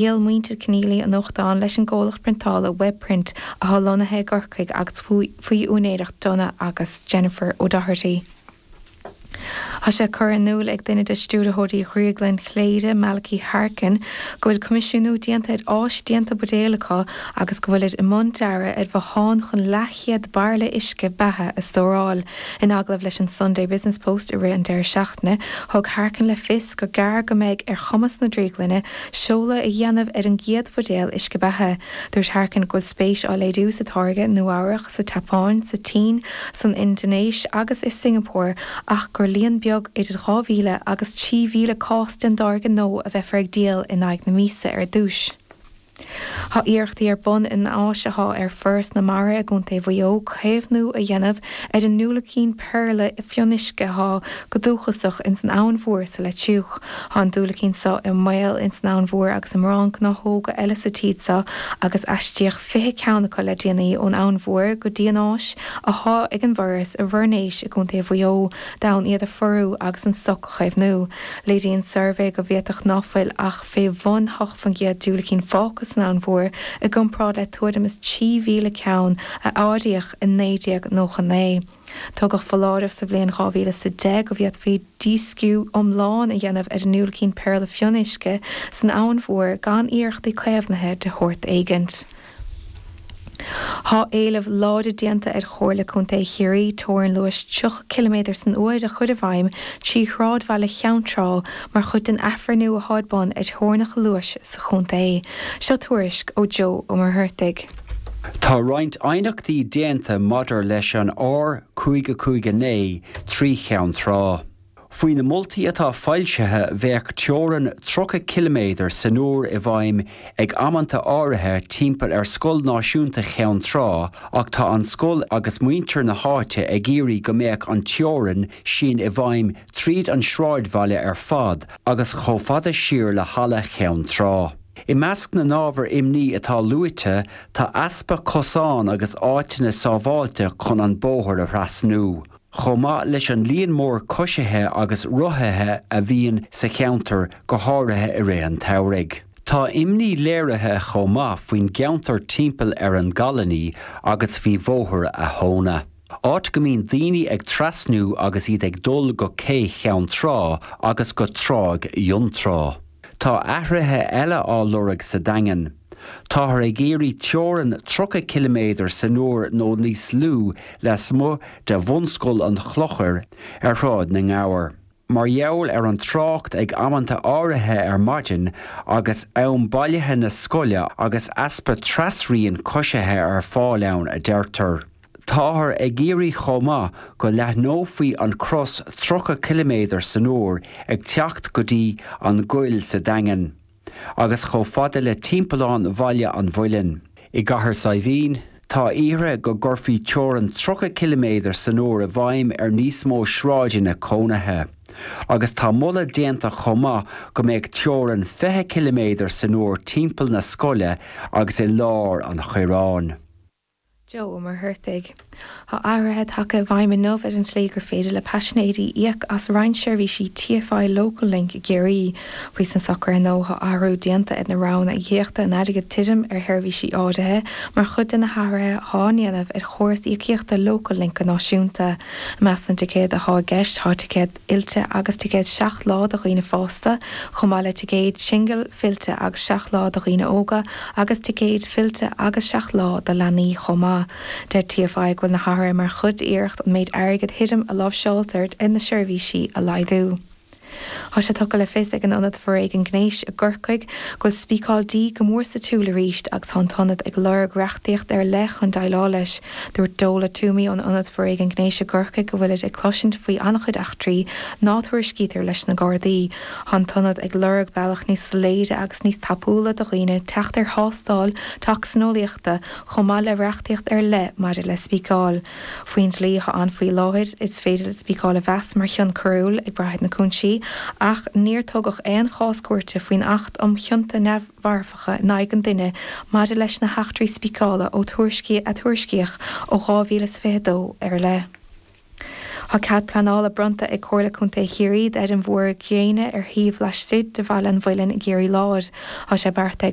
Dhíol muintir Kenneally a nuachtán leis an gcomhlacht priontála Webprint athá lonnaithe i gCorcaigh agus faoi úinéireacht Donagh agus Jennifer O'Doherty. Thá sé curtha in iúl ag duine de stiúrthóirí Dhrioglann Chléire, Malachy Harkin, go bhfuil coimisiúnú déanta ar áis déanta buidéal acu agus go bhfuilid i mbun dearadh ar bhothán chun leathchéad bairille uisce beatha a stóráil. In agallamh leis an Sunday Business Post i rith an deireadh seachtaine, thug Harkin le fios gur gairid go mbeidh ar chumas na drioglainne seoladh a dhéanamh ar an gcéad bhuidéal uisce beatha. Dúirt Harkin go bhfuil spéis á léiriú sa táirge i Nua-Eabhrac, sa tSeapáin, sa tSín, san Indinéis agus i Singeapór ach gur líon beag, idir 2,000 agus 3,000 cás den dtáirge nua a bheifear ag díol in aghaidh na míosa ar dtús. Thá iarrachtaí ar bun in áis athá ag Foras na Mara i gContae Mhaigh Eo caomhnú a dhéanamh ar an ndiúilicín péarla fionnuisce athá go dúchasach ins an Abhainn Mhór sa Leitriúch. Thá an diúilicín so i mbaol ins an Abhainn Mhór agus i mórán gnáthóga eile sa tír so agus aistríodh fiche ceann acu le déanaí ón Abhainn Mhór go dtí an áis athá ag an bhForas i bhFoirnéis i gContae Mhuigh Eo d'fhonn iad a phorú agus an stoc a chaomhnú. Léiríonn suirbhé go bhféadfadh ná fuil ach fé bhun hocht fán gcéad diúilicín fágtha san Abhainn Mhór i gcomparáid le tuairim is trí mhíle ceann a áiríodh i 1999. Tugadh foláireamh sa bhliain 2010 go bhféadfaí dísciú iomlán a dhéanamh ar an ndiúilicín péarla fionnuisce san Abhainn Mhór gan iarrachtaí caomhnaithe de shórt éigint. Thá éileamh láidir déanta ar Chomhairle Contae Chiarraí teorainn luais 30 ciliméadar san uair a chur i bhfeidhm trí shráidbhaile Cheann Trá mar chuid den athbhreithniú athá ar bun ar theorainneacha luais sa chontae. Seo tuairisc ó Joe Ó Muircheartaigh. Tá roinnt aighneachtaí déanta maidir leis an R559 trí Cheann Trá. Faoi na moltaí atá foilsithe, bheadh teorann 30 ciliméadar san uair i bhfeidhm ag amanta áirithe timpeall ar Scoil Náisiúnta Cheann Trá ach tá an scoil agus muintir na háite ag iarraidh go mbeadh an teorainn sin i bhfeidhm tríd an sráidbhaile ar fad agus chomh fada siar le Halla Cheann Trá. I measc na n-ábhar imní atá luaite, tá easpa cosán agus áiteanna sábháilte chun an bóthar a thrasnú, chomh maith leis an líon mór coisithe agus rothaithe a bhíonn sa cheantar, go háirithe i rith an tsamhraidh. Tá imní léirithe chomh maith faoin gceantar timpeall ar an gColony agus faoi Bhóthar a' Thóna. áit go mbíonn daoine ag trasnú agus iad ag dul go Cé Cheann Trá agus go Tráigh Fhionntrá. Tá athruithe eile á lorg sa Daingean. Táthar ag iarraidh teorann 30 ciliméadar san uair nó níos lú lasmuigh de Bhunscoil an Chlochair ar Shráid na nGabhar. Mar gheall ar an trácht ag amanta áirithe ar maidin agus am bailithe na scoile agus easpa trasrianta coisithe ar fáil ann, a deirtear. Táthar ag iarraidh chomh maith go leathnófaí an crios 30 ciliméadar san uair ag teacht go dtí an gCoill sa Daingean. agus chomh fada le timpeallán Bhaile an Mhuilinn. I gCathair Saidhbhín, tá iarrtha go gcuirfí teorainn 30 ciliméadar san uair i bhfeidhm ar níos mó sráideanna cónaithe, agus tá moladh déanta chomh maith go mbeadh teorainn 20 ciliméadar san uair timpeall na scoile agus i lár an Choireáin. Joe Ó Muircheartaigh, Tá athruithe tagtha i bhfeidhm inniu ar an tslí gur féidir le paisinéirí íoc as roinnt seirbhísí TFI Local Link i gCiarraí. Faoi socrú nua tá athrú déanta ar na roghanna íocaíochta in airgead tirim ar sheirbhísí áirithe mar chuid de na hathruithe athá ndéanamh ar chóras íocaíochta Local Link go náisiúnta. I measc na dticéad athá i gceist tá ticéad. fillte agus ticéad 7 lá do dhaoine fásta, chomh maith le ticéad singil, fillte agus 7 lá do dhaoine óga agus ticéad fillte agus 7 lá do leanaí chomh maith. Deir TFI go bhfuil na hathruithe mar chuid d'iarracht an méid airgid thirim a láimhseáiltear ar na seirbhísí a laghdú. Tá sé tugtha le fios ag an Ionad Foréigean Gnéis i gCorcaigh go bhfuil spíceáil dí go mór sa tsiúl arís agus tá an t-ionad ag lorg reachtaíocht ar leith chun déileáil leis. Dúirt Dola Twomey ón Ionad Foréigean Gnéis i gCorcaigh go bhfuilid ag cloisint faoi an-chuid eachtraí ná tuairiscítear leis na Gardaí. Tá an t-ionad ag lorg bealach níos soiléire agus níos tapúla do dhaoine teacht ar thástáil tocsaineolaíochta chomh maith le reachtaíocht ar leith maidir le spíceáil. Faoin dlí atá ann faoi láthair, is féidir spíceáil a mheas mar chion coiriúil, ag brath ar na cúinsí, ach níor tugadh aon chás cúirte faoin Acht um Chionta mharfacha in aghaidh an duine maidir leis na heachtraí spíceála a tuairiscíodh ó 2022 i leith. Tá cead pleanála bronnta ag Comhairle Contae Chiarraí d'fheirm mhór ghréine ar shuíomh laistigh de Bhaile an Mhuilinn i gCiarraí Láir. Tá sé beartaithe ag.